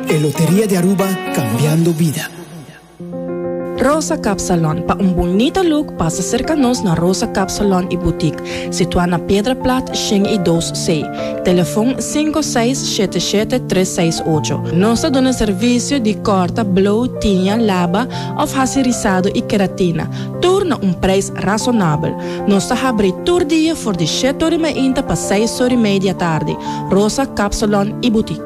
E Loteria di Aruba, Cambiando Bida. Rosa Cap Salon, pa un bunita look pasa serka nos na Rosa Cap Salon y Boutique, situá na Piedra Plat shin y dos C. Telefon sinku seis shete shete tres seis ocho. Nos ta duna servisio di kòrta, blow, tiña, laba òf hasi risado y keratina, tur na un preis rasonabel. Nos ta habri tur dia for di shèt ori mainta pa seis ori mei di atardi. Rosa Cap Salon y Boutique.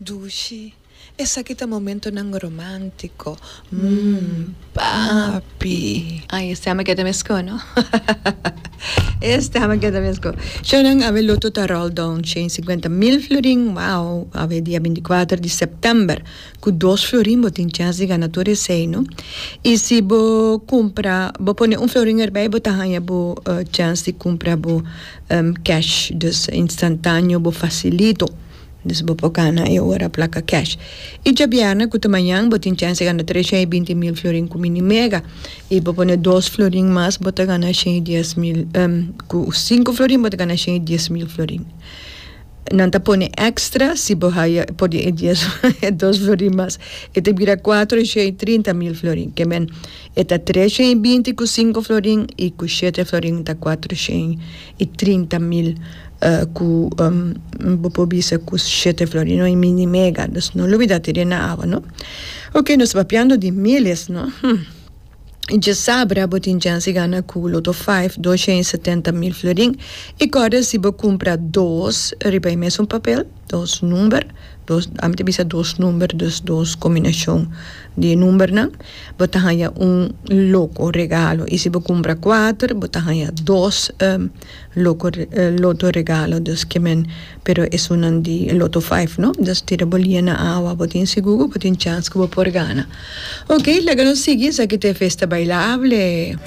Dushi, Esaki ta momentonan romántico, mm, papi. Ay, e stemmen keda mescó, no? E stemmen keda mescó. Shon nan, awe loto ta roll down shen cincuenta mil florin, wow, awe dia binticuater di september. Cu dos florin bo tin chance di gana tur esey, no? Y si bo cumpra, bo pone un florin erbey, bo ta haya bo chance di cumpra bo cash, dus, instantaneo, bo facilito. Dus bo por gana e ora plaka cash. I djabièrnè ku ta mañan bo tin chèns di gana tres shen i binti mil florin ku Mini Mega. I bo pone dos florin mas bo ta gana shen i dies mil ku sinku florin bo ta gana shen i dies mil florin. Nan ta pone èkstra si bo haya por di e dies e dos florin mas. E ta bira kuater shen i trinta mil florin. Ke men, e ta tres shen i binti ku sinku florin i ku shete florin ta kuater shen. E trinta mil ku bo por bisa ku shete flor i no e mini mega nos no lo bida tede na awa no oke nos papiando di miles no hum i djasabra bo tin chance gana ku loto five dos shei setenta mil florin i kòrda si bo kumpra dos riba e mesun papel Dos number, dos, ami ta bisa dos number, dus dos combinacion di e numbernan, bo ta haya un loco regalo. Y si bo cumpra cuater, bo ta haya dos loco loto regalo, dus ke men, pero esunnan di loto five, no? Dus tira bo lia na awa, bo tin sigur ku bo tin chans ku bo por gana. Ok, laga nos sigui, esaki ta e Festa Bailable.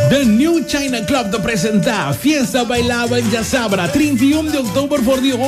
The New China Club ta presenta Fiesta Bailable Djasabra, trinta i un di october for di.